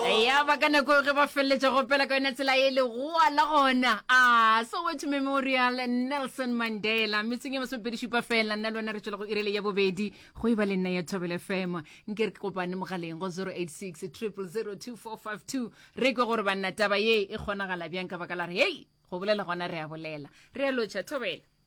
ya ba ka nako ge ba feleletša go opela ka yona tsela e legoa la gona a soweto memorial nelson mandela metseng e masomepedišupa fela nna le wena re tšwela go irele ya bobedi go e ba le nna ya thobele fema nke re ke kopane mogaleng go 086 002452 re kwe gore banna taba ye e kgonagala bjang ka baka la re hei go bolela gona re a bolela re a lotšha thobela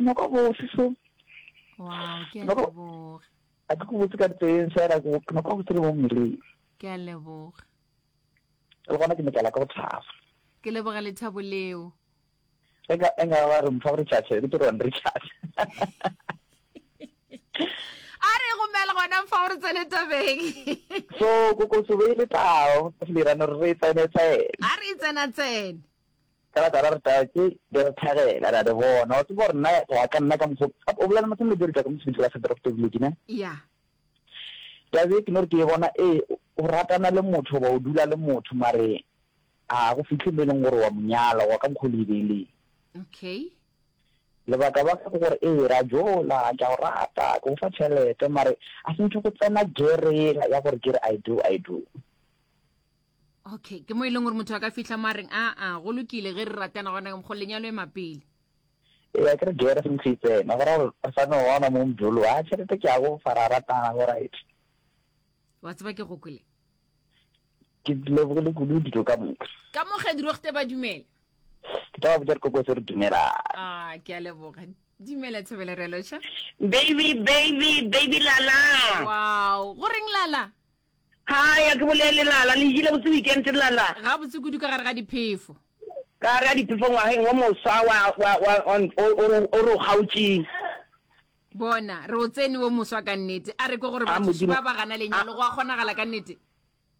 noko bose so wow ke a leboga a ke go botse ka teng fela ke noko go tsere mo mmeleng ke a leboga le gona ke ne ka la ka go thaba ke leboga lethabo leo enga enga ba re mfa re chacha re tlo re chacha a re go mela gona mfa re tsene tabeng so go go se be le tao le rana re tsene tsene a re tsena tsene Ka la tala re tatše, be re thagela, re a di bona. Wa tseba gore nna, go ya ka nna, ka mokgo, o bolela mo sengwe le diri ka ka mosebetsi wa seporofetoledi, ne? Ya. Taba e ke no re ke e bona, ee, o ratana le motho, goba o dula le motho, mare a go fihle mo e leng gore wa mo nyala, goba ka mokgo le e beileng. Okay. Lebaka baka ke gore, ee, ra jola, ke a go rata, ke go fa tšhelete, mare a se ntho go tsena gear ela ya gore ke re I do, I do. okay ke mo e leng gore motho a ka fitlha mo a reng aa go lokile ge re ratana gona go lenyalo e mapele ya ke re gere se ntse tsena gore re sa no ona mo mdolo a tšhelete ke ya go fara ratana go right wa tseba ke go kwele ke leboge le kudu dilo ka moka ka mo ge diro gte ba dumela ke tla ba botsa dikoko tse re dumela a ke a leboga dumela thobela re loša baby baby baby lala wow go reng lala Hi, a ke bolele, Lala. Le jele botse weekend, Lala? Gabotse kudu ka gare ga diphefo. Ka gare ga diphefo ngwageng wo moswa wa, wa, wa, wa, o, o, o re o kgaotšeng. Bona, re o tsene wo moswa ka nnete. A re ke gore A, batho Modimo. šupa ba gana lenyalo. Go a kgonagala ka nnete?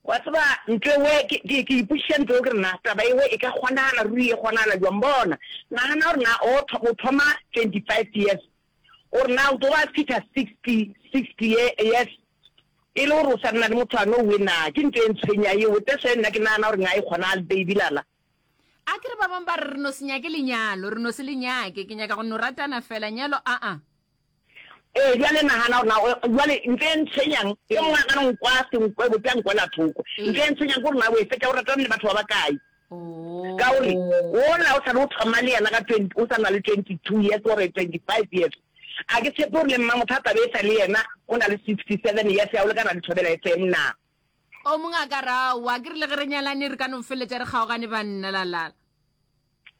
Wa tseba, ntlo ewe, ke, ke, ke ipotšiša ntlo eo, ke re, Na taba ewe e ka kgonagala ruri? E kgonagala bjang? Bona, nagana gore na o, o thoma 25 years, O re, Na o tlo ba fihla 60, 60 ye, yes, e le gore o sa nna le motho a no we na? Ke nto e ntshwenya yeo. That's why nna ke nagana gore nga e kgona al baby lala. A ke re ba bang ba re re no se nyake lenyalo, re no se le nyake. Ke nyaka go no ratana fela, nyalo aa. Ee, bjale nagana gore na o, bjale nto e ntshwenyang, e mongwe a ka no nkwa senkwe, bote a nkwela thoko. Nto e ntshwenyang ke gore na o e fetša o ratana le batho ba bakae. Ka o re, Wola o sa be o thoma le yena ka 20, o sa na le 22 years or 25 years. A ke tshepe gore le mma motho a tla be e sa le yena o na le 67 years ya go lekana le Thobela FM na? O mongwe a ka ra, Aowa, ke re le ge re nyalane re ka no feletša re kgaogane banna, la, la, la.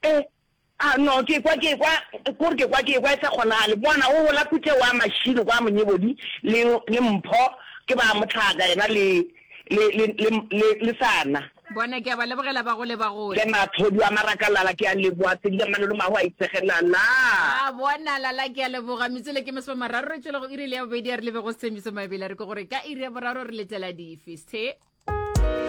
Eh, A no, ke kwa, ke kwa, ke gore ke kwa, ke ekwa e sa kgonagale. Bona, o gola kuthe wa mašilo kwa monyebodi, le, le mpho, ke ba mohlaka yena le, le, le, le, le, le sana. Bona, ke a ba lebogela ba go le ba go. Le mathodi wa maraka, Lala, ke a leboga, tsedile malolo mago a itsege, Lala. A bona, Lala, ke a leboga. Metsole ke masome mararo re tšwela go iri le ya bobedi a re lebe go Sethembiso Mabele a re ke gore ka iri ya boraro re letela dife, Sethe.